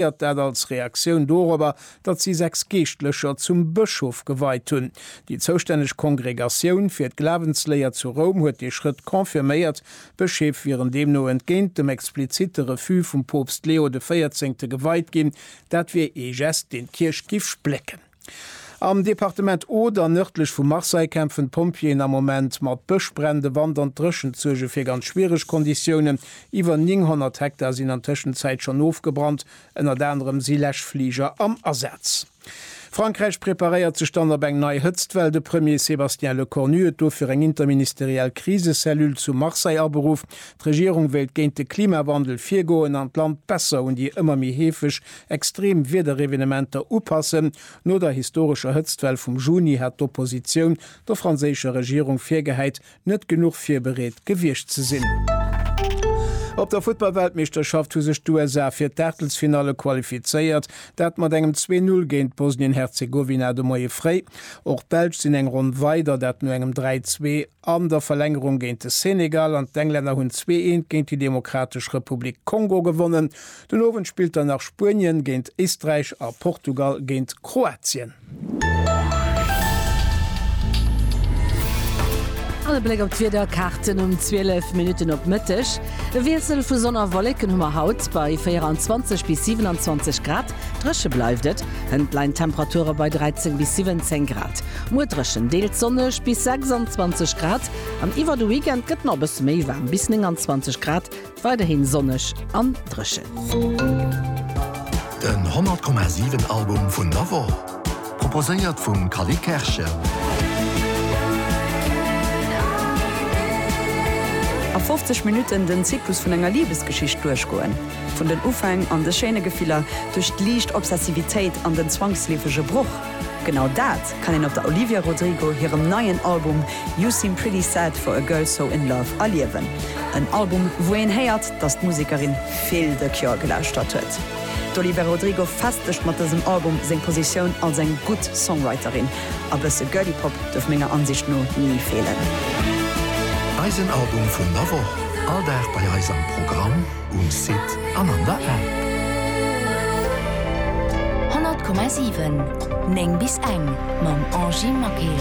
Passéiert dat als Reaktioun dorobber, datt si sechs Geeschtlecher zum Bëschof geweit hunn. Déi zoustänneg Kongregatioun fir d'Glawensléier zu Roum huet dee Schrëtt confirméiert. D'Bëscheef wieren deemno entgéint dem explizitte Refus vum Poopst Leo de Véierzéngte geweit ginn. Dat wier ee Gest, deen d'Kierch giff splécken. Am Departement Oder, nërdlech vu Marseille, kämpfen d'Pompjeeën am Moment mat Bëschbränn. De Wand an d'Dréchent suerge fir ganz schwiereg Konditiounen. Iwwer 900 Hektar sinn an Tëschenzäit schonn ofgebrannt. Ënnert anerem si Läschfliger am Asaz. Frankräich preparéiert sech dann op eng nei Hëtztwell. De Premier Sébastien Lecornu huet dofir eng interministeriell Krisecellule zu Marseille aberuff. D'Regierung wéilt géint de Klimawandel virgoen an d'Land besser un déi ëmmer méi heefeg extreem Wiederevenementer upassen. No der historescher Hëtztwell vum Juni hat d'Oppositioun der franséischer Regierung virgehäit, net genuch virbereet gewiescht ze sinn. Op der Futtball-Weltmeeschterschaft hu sech d'USA fir d'Aachtelsfinalle qualifizéiert, dat mat engem zwee Null géint Bosnien-Herzegowina de Moie fréi. Och d'Belsch sinn eng Ronn weider, dat no engem dräi zwee. An der Verlängerung géint de Senegal an d'Englänner hunn zwee Eent géint déi Demokratesch Republik Kongo gewonnen. Den Owend spillt dann nach Spuenien géint Éisträich a Portugal géint Kroatien. An e Bléck op d'Wiederkaarten um 12 Minutten op Mëtteg. E Wiessel vu Sonn a Wolleken hu mer haut bei 24 bis 27 Grad. Dréche bleift et, hënt leien d'Temperature bei 13 bis 17 Grad. Muer dréchen, deels sonneg bis 26 Grad an iwwer de Weekend gëtt nach e bësse méi waarm, bis 29 Grad, weiderhi sonneg an dréchen. Den 100,7 Album vun der Woch, proposéiert vum Cally Kerschen. A 50 Minutten den Zyklus vun enger Libesgeschicht duerchgoen, vun den Ufäng an de schéine Gefiller, duerch d'liicht Obsessivitéit an den zwangsleefege Broch. Genau dat kann een op der Olivia Rodrigo hirem neien Album You Seem Pretty Sad For A Girl So In Love erliewen. En Album, wou een héiert, dass d'Musekerin vill The Cure gelauschtert huet. D'Olivia Rodrigo festegt mat dësem Album seng Positioun als eng gutt Songwriterin. A bësse Girly Pop duerf menger Ansicht no ni feelen. Eisen Album vun der Woch, all Dag bei eis am Programm. Um Site an an der App. 100,7 9 bis eng mam Angy Maquet.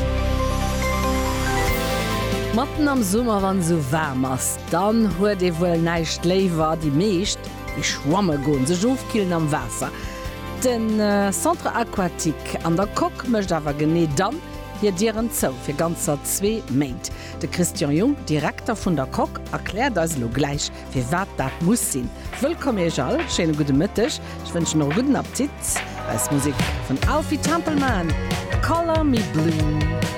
Matten am Summer wann sou waarm ass, dann huet ee wuel näischt léiwer, déi meescht gi schwamme goen, sech ofkillen am Waasser. Den Centre Aquatique an der Coque mécht awer genee dann hir Dieren zou, fir ganzer zwee Méint. De Christian Jung, Direkter vun der Coque, erkläert eis elo gläich Firwat dat muss sinn. Wëllkomm iech all, schéine gudde Mëtteg, ech wënschen och e gudden Appetit. Eis Musek vun Alfie Templeman, Color Me Blue.